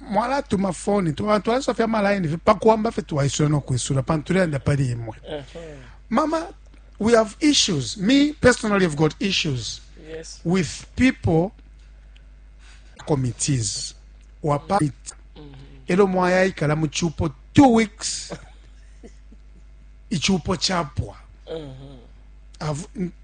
mwalatuma foni twalasoa fye amalaini fye pakuwamba fye twaisula nokwisula pantu tulelanda pali imwe mama we have issues me personally have got issues yes. with people committees wapa mm -hmm. elo mwayaikala mu chupo two weeks ichupo chapwa mm -hmm.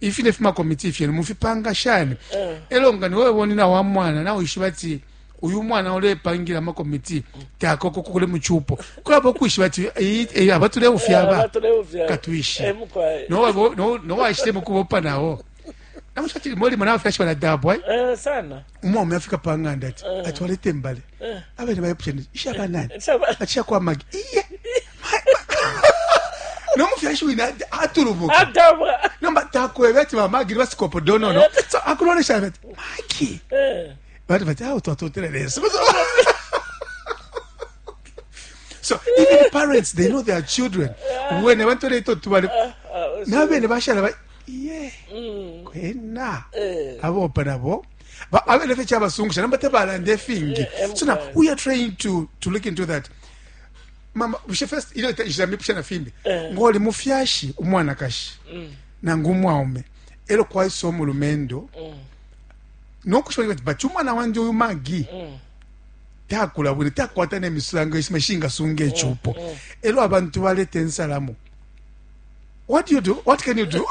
ifine fimakomiti fyenu mufipanga shani eh. elo nga niwe bonina wa mwana nawe ishiba ti uyu mwana ulepangila amakomiti takoko kukule muchupo kulabo kwishiba ati eh, eh, abatuleufya aba katwishi nowashite mukubopa nawo namushati moli mwana wafyashi baladabwa sana umwaume afika pa ng'anda ati eh. ati walete mbale eh. abene bayepushani ishaba nani ati shakwa magi iye nomufyashi wina atulubuka nomba takwebe ati bamagi basikopo donono eh. so akulolesha ati magi bati bati awo twatotela leso so even parents they know their children wene bantoletotubaleko nabene bashala iye mm. kwena eh. abopa nabo abene fye kyabasungusha namba tebalanda efingi eh, eh, so now we are trying to, to look into that mama bushe first ile ijira mipusha na fimbi ngoli mufyashi umwanakashi mm. nangu umwaume elo kwaisa omulumendo mm. nokushobola ati bati umwana wandi uyu magi mm. takula bwino takwata nemisango esima shingasunga ekyupo elo abantu baleta ensalamu what you do what can you do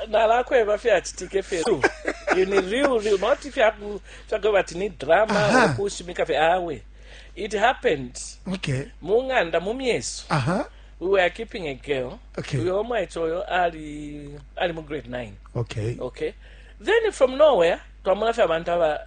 nalakweba fyachitike fye ini real real not fyakweba ati ni drama okushimika fye awe it happened okay mu ng'anda mu myeso uh -huh. we were keeping a girl okay uyo omwaicho oyo ali ali mu grade 9 okay okay then from nowhere twamona fye abantu aba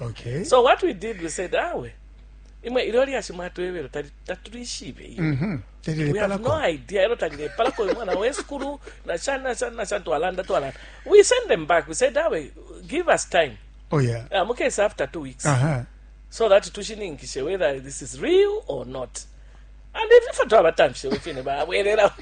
okay so what we did we said awe imwe ilyo lyashi mwatwebelo tali- tatulishibe iyo mm -hmm. we have no idea elo talilepalako imwana wesukulu nashani nashani nashani twalanda twalanda we send them back we said awe give us time oh yeah uh, mukese after two weeks uh -huh. so that tushininkishe whether this is real or not and if ife twabatamfishe wefine babwelela